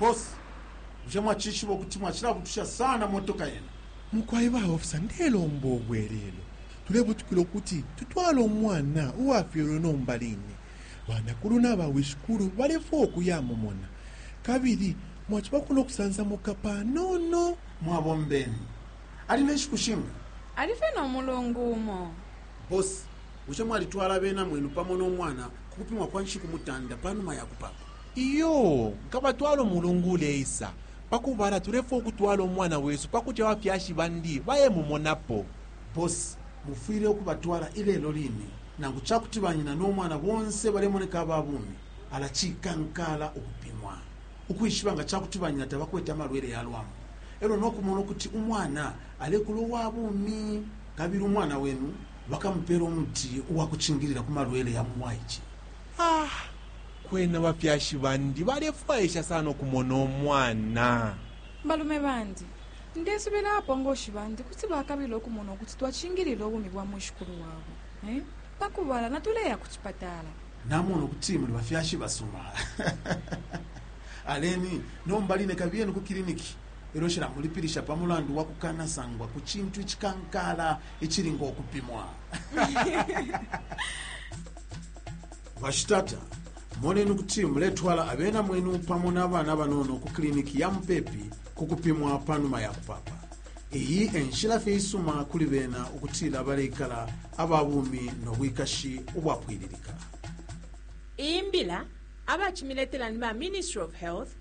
Boss, bushe mwacishiba ukuti mwacilabutusha sana motoka yenu? Mukwai ba officer ndelomba ubwelelo. Tulebutukila ukuti tutwale umwana uwafyelwe nomba line. Banakulu naba wishikulu balefwaya ukuyamumona. Kabili mwacibako no kusansamuka panono. Mwabombeni. Ali ne nshiku shinga? Ali fye no mulungu umo. Boss, bushe mwalitwala abena mwenu pamo no mwana ku kupimwa kwa nshiku mutanda pa numa ya kupapa? Iyoo, nkabatwala umulungu uleisa. Pa kubala, tulefwaya ukutwala umwana wesu pa kuti abafyashi bandi bayemumonapo. Boss, mufwile ukubatwala ilelo line. Nangu ca kuti banyina no mwana bonse balemoneka aba bumi, ala cikankaala ukupimwa ukwishiba nga ca kuti banyina tabakwete amalwele ya lwambu e lyo no kumona ukuti umwana alekula uwa bumi. Kabili umwana wenu bakamupeela umuti uwa kucingilila ku malwele ya mu bwaice. Ah! Kwena abafyashi bandi balefwaisha sana ukumona umwana. Balume bandi, ndesubila abapongoshi bandi kuti bakabila ukumona ukuti twacingilila ubumi bwa mwishikulu wabo. Eh? Pa kubala, natuleya ku cipatala. Namona ukuti muli bafyashi basuma. Aleni, nomba line kabiyeni ku kiliniki. e lyo shilamulipilisha pa mulandu wa kukanasangwa ku cintu icikankala icili ngo kupimwa. Bashitata, moneni ukuti muletwala abena mwenu pamo na bana banono ku kiliniki ya mupepi ku kupimwa pa numa ya kupapa. Iyi e nshila fye isuma kuli bena ukutila baleikala aba bumi no bwikashi ubwapwililika. Iyi mbila abacimiletela ni ba Ministry of Health